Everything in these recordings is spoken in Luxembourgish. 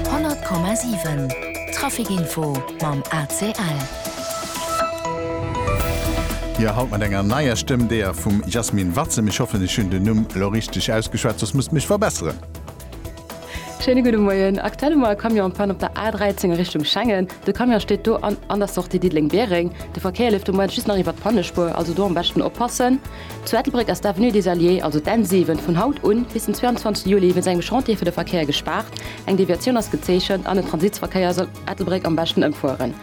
100,7 Trafic Info mam ACL. Jo, haut mat enger neier Stëmm, deeër vum Jasmin Watzem. Ech hoffen, ech hunn den Numm elo richteg ausgeschwat, soss musst mech verbesseren. Schéine gudde Moien. Aktuell hu mer e Camion en panne op der A13 a Richtung Schengen. De Camion steet do an an der Sortie Diddeleng-Biereng. De Verkéier leeft de Moment just nach iwwert d'Pannespuer, also do am beschten oppassen. Zu Ettelbréck ass d'Avenue des Alliés, also d'N7, vun haut u bis den 22 Juli wéinst engem Chantier fir de Verkéier gespaart. Eng Deviatioun ass gezeechent an den Transitsverkéier soll Ettelbréck am beschten ëmfueren.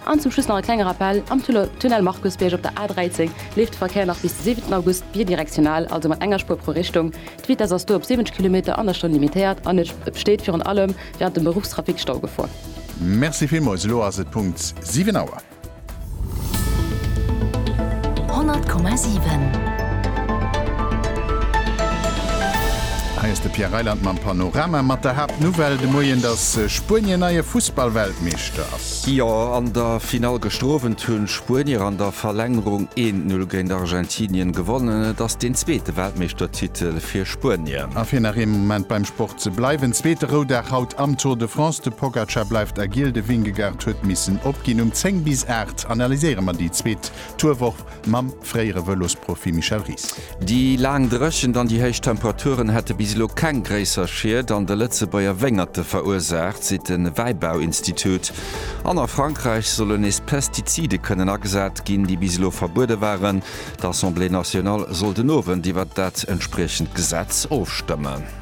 An zum Schluss nach e klenge Rappel, Am Tunnel Markusbierg op der A13 leeft de Verkéier nach bis de 7 August bidirektional, also mat enger Spuer pro Richtung. D'Vitess ass do op 70 Kilometer an der Stonn limitéiert an et besteet virun allem wärend dem Beruffstrafic Staugefor. Merci villmols, elo ass et Punkt 7 Auer. Hei ass de Pierre Reyland mam Panorama mat der Haaptnouvelle de Moien, dass Spuenien neie Fussballweltmeeschter ass. Jo, an der Finall gëschter Owend hunn d'Spuenier an der Verlängerung een Null géint Argentinien gewonnen. Et ass deen zweete Weltmeeschtertitel fir Spuenien. A fir nach ee Moment beim Sport Se bleiwen zweete Roudag haut am Tour de France, de Pogacar bleift agill, de Vingegaard huet missen opginn. Um 10 bis 8 analyséiere mer déi zweet Tourwoch mam fréiere Vëlosprofi Michel Ries. Déi laang Dréchent an déi héich Temperaturen hätte bis elo keng gréisser Schied an de Lëtzebuerger Wéngerte verursaacht, seet de Wäibauinstitut. An a Frankräich solle nees Pestizide kënnen agesat ginn, déi bis elo verbuede waren. D'Assemblée nationale soll den Owend iwwert dat entspriechend Gesetz ofstëmmen.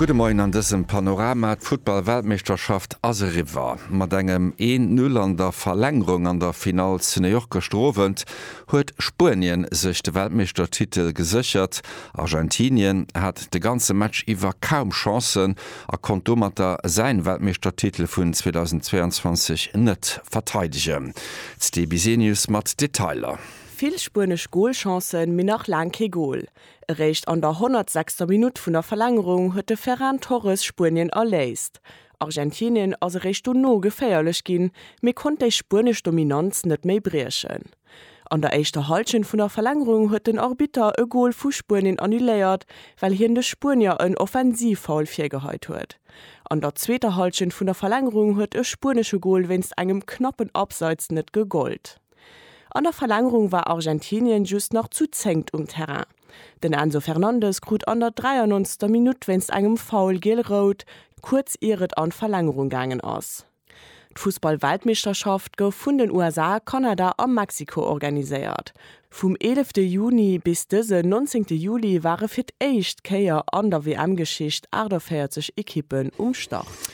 Gudde Moien an dësem Panorama, D'Futtball-Weltmeeschterschaft ass eriwwer. Mat engem een Null an der Verlängerung an der Finall zu New York gëschter Owend huet Spuenien sech de Weltmeeschtertitel geséchert. Argentinien hat de ganze Match iwwer kaum Chancen a konnt domatter säin Weltmeeschtertitel vun 2022 net verteidegen. D'Sti Bisenius mat Detailer. Vill spuenesch Golchancen, mee nach laang kee Gol. Eréischt an der 106. Minutt vun der Verlängerung huet de Ferran Torres Spuenien erléist. Argentinien ass eréischt dono geféierlech ginn, mee konnt déi spuenesch Dominanz net méi briechen. An der éischter Hallschent vun der Verlängerung huet den Arbitter e Gol vu Spuenien annuléiert, well hien de Spuenier en Offensivfoul virgeheit huet. An der zweeter Hallschent vun der Verlängerung huet e spuenesche Gol wéinst engem knappen Abseits net gegollt. An der Verlängerung war Argentinien just nach zu zéngt um Terrain. Den Enzo Fernandez krut an der 93. Minutt wéinst engem Foul giel-rout, kuerz ier et an d'Verlängerung gaangen ass. D'Fussball-Weltmeeschterschaft gouf vun den USA, Kanada a Mexiko organiséiert. Vum eelefte Juni bis dësen nonzéngte Juli ware fir d'éischt Kéier an der WM-Geschicht 48 Ekippen um Start.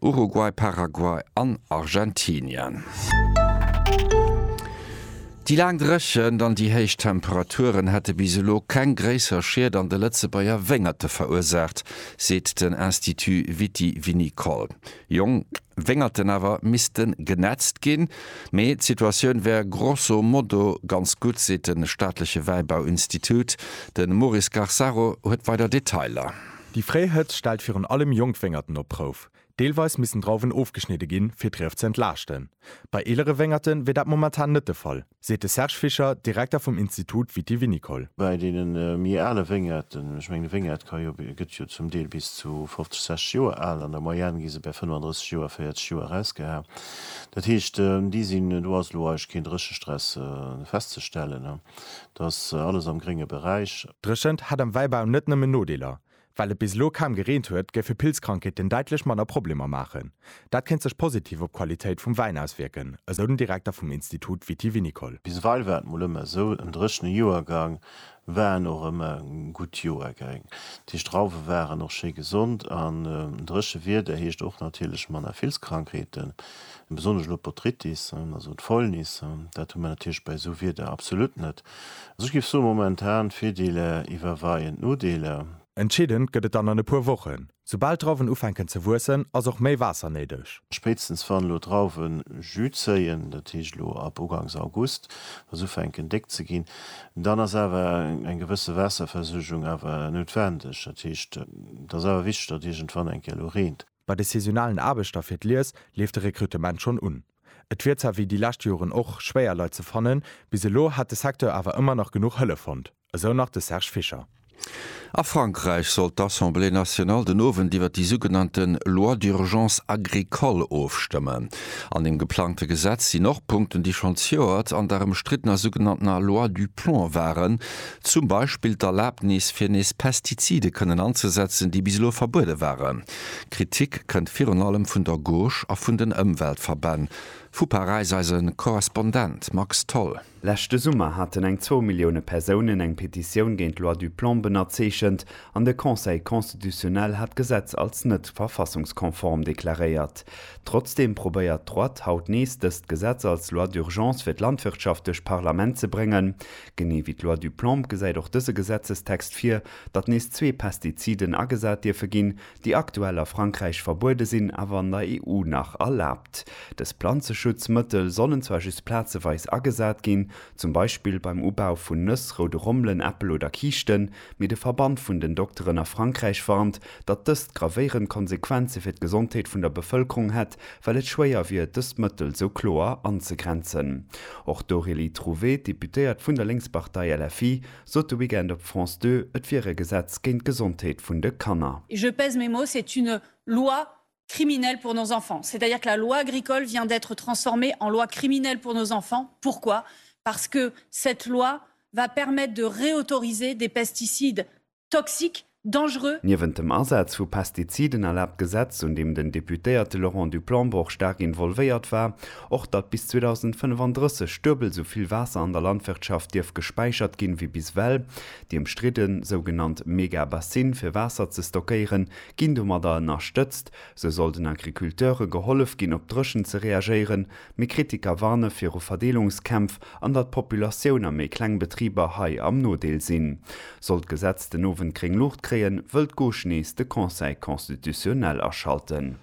Uruguay, Paraguay an Argentinien. Déi laang Dréchent an déi héich Temperaturen hätte bis elo keng gréisser Schied an de Lëtzebuerger Wéngerte verursaacht, seet den Institut Viti-Vinicole. Jonk Wéngerten awer misste genätzt ginn. Mee d'Situatioun wär grosso modo ganz gutt, seet de staatleche Wäibauinstitut. De Maurice Garsaro huet weider Detailer. Déi fréi Hëtzt stellt virun allem jonk Wéngerten op d'Prouf. Deelweis missten Drauwen ofgeschnidde ginn, fir d'Rief ze entlaaschten. Bei eelere Wéngerte wier dat momentan net de Fall, seet de Serge Fischer, Direkter vum Institut Viti-Vinicole. Bei deene méi ale Wéngerten, ech mengen e Wéngert ka jo, gëtt jo zum Deel bis zu 50, 60 Joer al, an der Moyenne gi se bäi 35 Joer, 40 Joer erausgeha. Dat heescht, déi sinn, do ass elo eigentlech keen Dréchestress festzestellen. Dat ass alles am grénge Beräich. Dréchent hätt am Wäibau net nëmmen Nodeeler. Well et bis elo kaum gereent huet, géife Pilzkrankheeten däitlech manner Problemer maachen. Dat kéint sech positiv op d'Qualitéit vum Wäin auswierken, esou den Direkter vum Institut vitivinicole. Biseweill war et mol ëmmer esou, en dréchene Joergang war en och ëmmer e gutt Joergäng. Déi Strauwe waren och schéi gesond an dréche Wieder heescht och natierlech manner Vilzkrankheeten. e besonnesch elo d'Botrytis, also d'Fäulnis, dat hu mer natierlech bei esou Wieder absolut net. Also ech géif soen, momentan d'Virdeeler iwwerweien d'Nodeeler. Entscheedend gëtt et dann an e puer Wochen. Soubal d'Drauwen ufänken ze wuessen, ass och méi Waasser néideg. Spéitstens wann elo d'Drauwen Jus zéien, dat heescht elo ab ugangs August, wa se ufänken déck ze ginn, dann ass awer eng gewësse Waasserversuergung awer noutwendeg. Dat heescht, et ass awer wichteg, datt iergendwann eng Kéier elo reent. Bei de saisonalen Aarbechter fir d'Lies leeft de Rekrutement schonn un. Et wier zwar wéi déi lescht Joren och schwéier Leit ze fannen, bis elo hätt de Secteur awer ëmmer nach genuch Hëllef fonnt, esou nach de Serge Fischer. A Frankräich soll d'Assemblée nationale den Owend iwwer déi sougenannte Loi d'urgence agricole ofstëmmen. An dem geplangte Gesetz sinn och Punkten, déi schonn zejoert an der ëmstriddener sougenanntener Loi du Plomb waren, Zum Beispill d'Erlaabnis, fir nees Pestizide kënnen anzesetzen, déi bis elo verbuede waren. Kritik kënnt virun allem vun der Gauche a vun den Ëmweltverbänn. Vu Paräis eise Korrespondent Max Tholl. Leschte Summer haten eng zwou Millioune Persounen eng Petitioun géint d'Loi du Plomb ënnerzeechent an de Conseil constitutionnel hat d'Gesetz als net verfassungskonform deklaréiert. Trotzdeem probéiert d'Droite haut nees dëst Gesetz als Loi d'urgence fir d'Landwirtschaft duerch d'Parlament ze bréngen. Genee wéi d'Loi du Plomb gesäit och dëse Gesetzestext vir, datt nees zwee Pestiziden agesat dierfe ginn, déi aktuell a Frankräich verbuede sinn, awer an der EU nach erlaabt. Dës Planzeschutzmëttel sollen zwar just plazeweis agesat ginn, zum Beispill beim Ubau vun Nëss, roude Rommelen, Äppel oder Kiischten, mee de Verband vun den Dokteren a Frankräich warnt, datt dëst gravéierend Konsequenze fir d'Gesondheet vun der Bevëlkerung hätt, well et schwéier wier, dëst Mëttel sou kloer anzegrenzen. Och d'Aurélie Trouvé, d'Deputéiert vun der Lénkspartei LFI, sot de Weekend op France Deux, et wier e Gesetz géint d'Gesondheet vun de Kanner. Et je pèse mes mots, c'est une loi criminelle pour nos enfants. C'est-à-dire que la loi agricole vient d'être transformée en loi criminelle pour nos enfants. Pourquoi? Parce que cette loi va permettre de réautoriser des pesticides toxique, dangereux. Niewent dem Asaz vu Pestiziden erlaabt d'Gesetz, un deem den Deputéierte Laurent du Plombourg staark involvéiert war, och, datt bis 2035 duebel esou vill Waasser an der Landwirtschaft dierf gespäichert ginn, wéi bis ewell. Déi ëmstridden sougenannt Megabassine fir Waasser ze stockéieren, ginn domadder ënnerstëtzt. Sou soll den Agriculteure gehollef ginn, op d'Dréchent ze reagéieren. Mee Kritiker warne viru Verdeelungskämpf an datt d'Populatioun a méi kleng Betriber hei am Nodeel sinn. Sollt d'Gesetz den Owend gréng Luucht kréien, wëll d'Gauche nees de Conseil constitutionnel aschalten.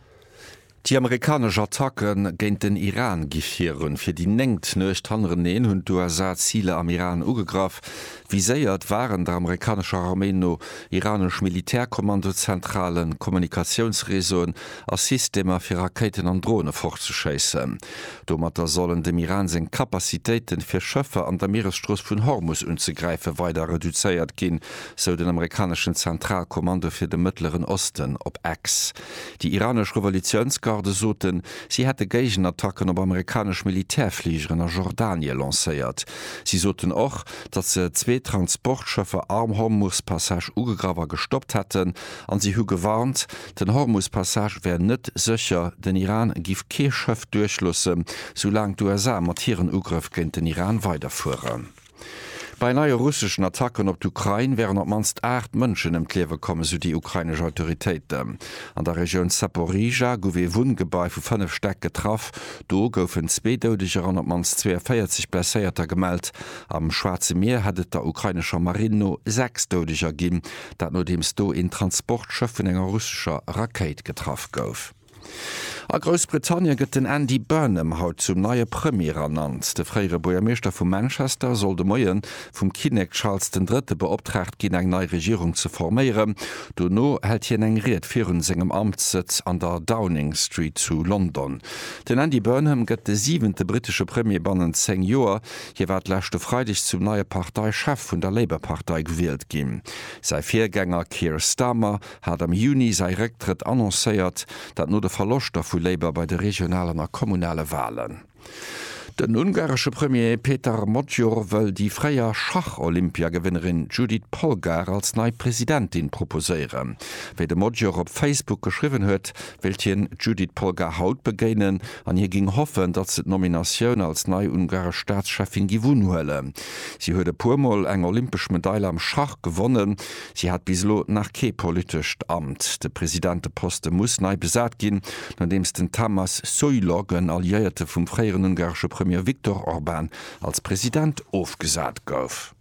Déi amerikanesch Attacke géint den Iran gi virun. Fir déi néngt Nuecht hannereneen hunn d'USA Ziler am Iran ugegraff, Viséiert waren der amerikanescher Arméi no iranesch Militärkommandozentralen, Kommunikatiounsreseauen a Systemer fir Rakéiten an Drone fortzeschéissen. Domatter sollen dem Iran seng Capacitéiten, fir Schëffer an der Mieresstrooss vun Hormus unzegräifen, weider reduzéiert ginn, sou den amerikaneschen Zentralkommando fir de Mëttleren Osten op X. Déi iranesch Revolutiounsgarde soten, si hätte Géigenattacken op amerikanesch Militärfligeren a Jordanie lancéiert. Si soten och, datt se zwee Transportschëffer am Hormus-Passage ugegraff a gestoppt hätten, an si hu gewarnt, den Hormus-Passage wär net sécher, den Iran giff kee Schëff duerchloossen, soulaang d'USA mat hiren Ugrëff géint den Iran weiderfueren. Bei neie russeschen Attacken op d'Ukrain wären op d'mannst 8 Mënschen ëm d'Liewe komm, esou déi ukrainesch Autoritéiten. An der Regioun Zaporizhzhia gouf ee Wunngebai vu 5 Stäck getraff. Do goufen zwee Doudeger an op d'mannst 42 Blesséierter gemellt. Am Schwaarze Mier hätt et der ukrainescher Marinn no 6 Doudeger ginn, dat nodeems do een Transportschëff vun enger russescher Rakéit getraff gouf. A Groussbritannien gëtt den Andy Burnham haut zum neie Premier ernannt. De fréiere Buergermeeschter vu Manchester soll de Moie vum Kinnek Charles den Drëtte beoptraagt ginn, eng nei Regierung ze forméieren. Dono hält hien eng Ried virun sengem Amtssëtz an der Downing Street zu London. Den Andy Burnham gëtt de siwente brittesche Premier bannent zéng Joer. Hie war d'lescht e Freideg zum neie Parteichef vun der Labour-Partei gewielt ginn. Säi Virgänger Keir Starmer hat am Juni säi Récktrëtt annoncéiert, dat no de Verloschter vu Labour bei de regionalen a kommunale Walen. Den ungaresche Premier Peter Magyar wëll déi fréier Schach-Olympiagewënnerin Judit Polgár als nei Presidentin proposéieren. Wéi de Magyar op Facebook geschriwwen huet, wéilt hien d'Judit Polgár haut begéinen an hie géing hoffen, datt se d'Nominatioun als nei ungaresch Staatscheffin géif unhuelen. Si huet e puer Mol eng olympesch Medail am Schach gewonnen, Si hat bis elo nach kee politescht Amt. De Presidenteposte muss nei besat ginn, nodeems den Tamas Soilog, en Alliéierte vum fréieren ungaresche Premier Viktor Orban, als President ofgesat gouf.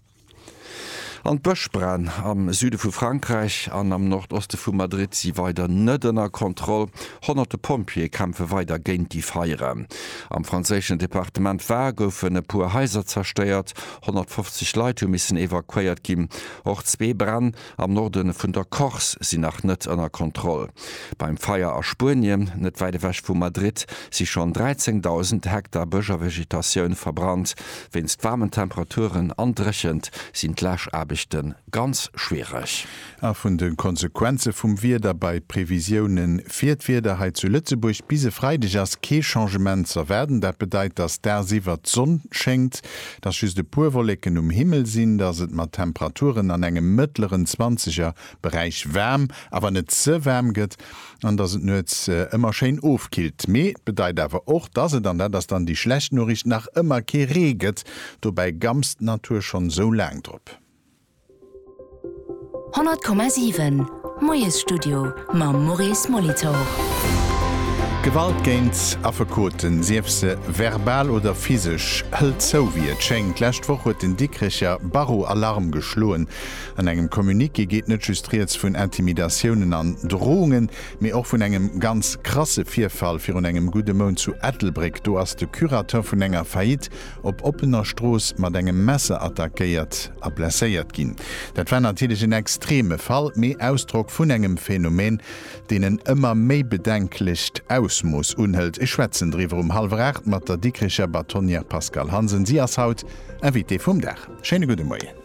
An d'Bëschbränn am Süde vu Frankräich an am Nordoste vu Madrid si weider net ënner Kontroll. Honnerte Pompjeeë kämpfe weider géint déi Feieren. Am franséischen Departement Var goufen e puer Haiser zerstéiert. 150 Leit hu missen evakuéiert ginn. Och zwee Bränn am Norde vun der Corse sinn nach net ënner Kontroll. Beim Feier a Spuenien, net wäit ewech vu Madrid, si schonn 13.000 Hektar Bësch a Vegetatioun verbrannt. Wéinst waarmen Temperaturen an Dréchent sinn d'Läschaarbechte ganz schwiereg. A vun de Konsequenze vum Wieder bei d'Previsioune fir d'Wieder hei zu Lëtzebuerg, Bis e Freideg ass kee Changement z'erwaarden. Dat bedeit, dass dagsiwwer d'Sonn schéngt, dass just e puer Wolleken um Himmel sinn, dass et mat Temperaturen an engem mëttleren zwanzeger Beräich waarm, awer net ze waarm gëtt an dass et nuets ëmmer schéin ofkillt. Mee et bedeit awer och, dass et, an dat ass dann déi schlecht Noriicht, nach ëmmer kee Ree gëtt. Dobäi gamst d'Natur schonn esou laang drop. 100,7 Moiesstudio mam Maurice Molitor. Gewalt géint Affekoten, sief se verbal oder physesch, hëlt zou, wéi et schéngt. D'lescht Woch huet den Dikrecher Barreau Alarm geschloen. An engem Communiqué geet net just rieds vun Intimidatiounen an Drohungen, mee och vun engem ganz krasse Virfall virun engem gudde Mount zu Ettelbréck. Do ass de Curateur vun enger Faillite op oppener Strooss mat engem Messer attackéiert a blesséiert ginn. Dat war natierlech en extreme Fall, mee Ausdrock vun engem Phänomen, deen en ëmmer méi bedenklecht Ausmooss unhëlt. Ech schwätzen driwwer um hallwer 8 mat der Dikricher Batonnière Pascale Hansen. Si ass haut Invitée vum Dag. Schéine gudde Moien.